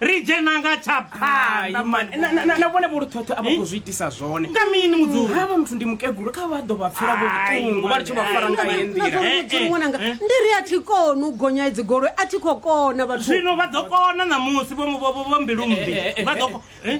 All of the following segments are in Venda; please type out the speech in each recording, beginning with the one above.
ri dzhena nga tsha phanḓa mani Na- na- na- na vhone vholuthotho a vha khou zwi itisa zwone nga mini mudzuri havha muthu ndi mukegulu kha vha ḓo vha pfela Ai, vhuṱungu vha litsho vha fara nga heyi nḓila Eh, eh, Nazwa ṅwananga eh. ndi ri a thi koni u gonya idzi goloi a thi khou kona vhathu zwino vha ḓo kona ṋamusi vho vho- vho- vho mbilumbi vha ḓo ko- eh?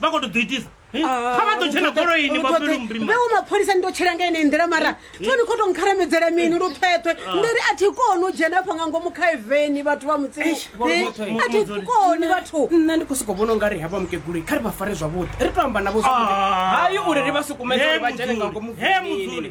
vha khou to ḓo itisa Eh, Ah, kha vha ḓo tshena goloini vha fhele murima veo mapholisa ndi to tshela nga ine nḓila mara toni kho to nkharamedzela mini lu phethwe ndi ri a thi koni u dzhena afha nga ngomu kha eveni vhathu vha mutsini Eh, a thi koni vhathu nṋe ndi khou sokou vhona ungari havha mukeguloi kha ri vha fare zwavhuḓi ri to amba navho zwavhuḓi Ah. hayi uri ri vha sukumedze uri vha dzhene nga ngomu He mudzuli.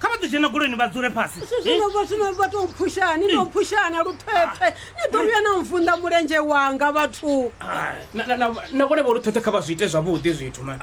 kha vha ḓi dzhena goloini vha dzule fhasi zwino vha zwino vha tou mphushani no mphushana luthwepfe ni ḓo vhuya na mvunḓa mulenzhe wanga vhathu na vhone vho luthwepfe kha vha zwi ite zwavhuḓi zwithu ma